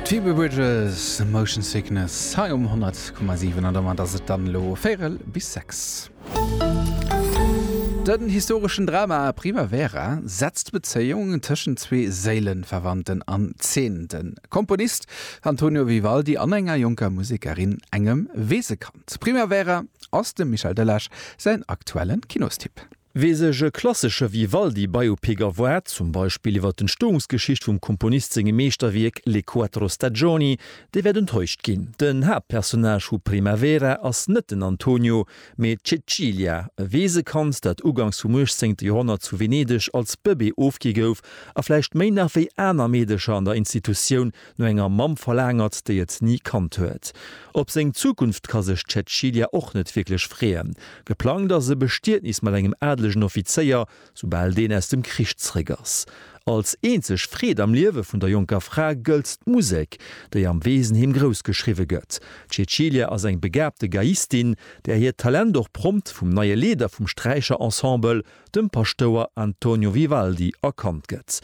D'Phoebe Bridgers, Motion Sickness hei um 100,7 an domat ass et dann elo véierel bis sechs. Den historeschen Drama Primavera setzt d'Bezéiung tëschent zwee Séilenverwandten an Zeen, de Komponist Antonio Vivaldi an enger jonker Musekerin, engem Weesekand. Primavera ass dem Michel Delage säin aktuellen Kinostipp. Wee sech e klassesche Vivaldi-Biopic erwaart, zum Beispill iwwer d'Entstoungsgeschicht vum Komponist sengem Meeschterwierk Le quattro stagioni, dee wäert enttäuscht ginn. Den Haaptpersonnage vu Primavera ass net den Antonio, mee d'Cecilia, e Weesekand, dat uganks vum uechtzéngte Joerhonnert zu Venedeg als Bëbee ofgi gouf a vläicht méi nach wéi aner Meedercher an der Institutioun No enger Mamm verlaangert, déi et ni kannt huet. Op seng Zukunft ka sech d'Cäcilia och net wierklech freeën. Geplangt ass e Bestietnis mat engem adelegen Offizéier, soubal deen aus dem Krich zeréck ass. Als eenzeg Freed am Liewe vun der jonker Fra gëllt d'Musek, déi am Weesenheem grouss geschriwwe gëtt. D'Cäcilia ass eng begaabte Geiistin, där hiert Talent och prompt vum neie Leeder vum Sträicherensemble, dem Paschtouer Antonio Vivaldi erkannt gëtt.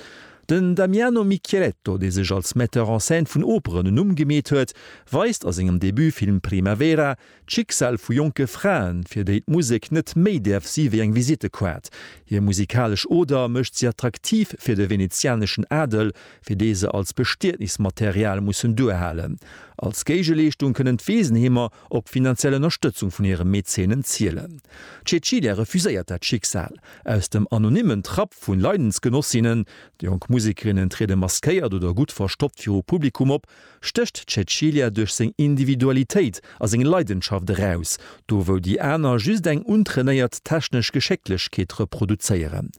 Den Damiano Micheletto, dee sech als Metteur en scène vun Operen en Numm gemeet huet, weist a sengem Debutfilm Primavera d'Schicksal vu jonke Fraen, fir déi d'Musek net méi däerf si wéi eng Visittekaart. Hir musikalesch Oder mécht si attraktiv fir de venezianeschen Adel, fir dee se als Bestietnismaterial mussen duerhalen. Als Géigeleeschtung kënnen d'Weesenheemer op finanziell Ënnerstëtzung vun hire Mäzenen zielen. D'Cecilia refuséiert dat Schicksal. Aus dem anonymmen Trapp vu Leidensgenossinnen, jonk Musekerinnen triede maskéiert oder gutt verstoppt viru Publikum op, stécht d'Cecilia duerch seng Individualitéit a seng Leidenschaft eraus, do wou déi aner just eng untrainéiert technesch Geschécklechkeet reproduzéieren.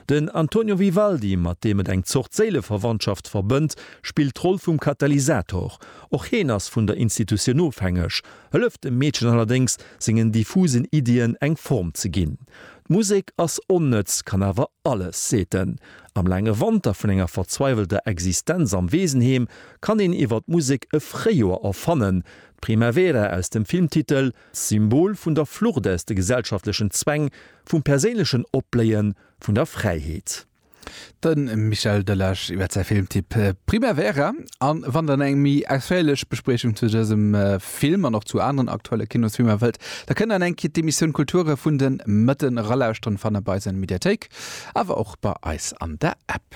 Den Antonio Vivaldi, mat deem et eng Zort Séileverwandschaft verbënnt, spillt d'Roll vum Katalysator, Och heen ass vun der Institutioun ofhängeg, hëlleft dem Meedchen allerdéngs, sengen diffusen Iddien eng Form ze ginn. D'Musek ass onnëtz, kann awer alles, seet en. Am laange Wanter vun enger verzweiwelter Existenz am Weesenheem kann een iwwer d'Musek e Fréijoer erfannen. D'Primavera aus dem Filmtitel, Symbol vun der Flucht aus de gesellschaftlechen Zwäng, vum perséinlechen Opbléien, vun der Fräiheet. De Michel Delage iwwer säi Filmtipp Primavera. A wann der eng méi ausféierlech Bespriechung zu dësem Film an och zu aneren aktuelle Kinosfilmer wëllt, da kënnt der eng Kéier d'Emissioun Kulture vun de Mëtte eralauschteren. Fannt der bei eis an der Mediathéik, awer och bei eis an der App.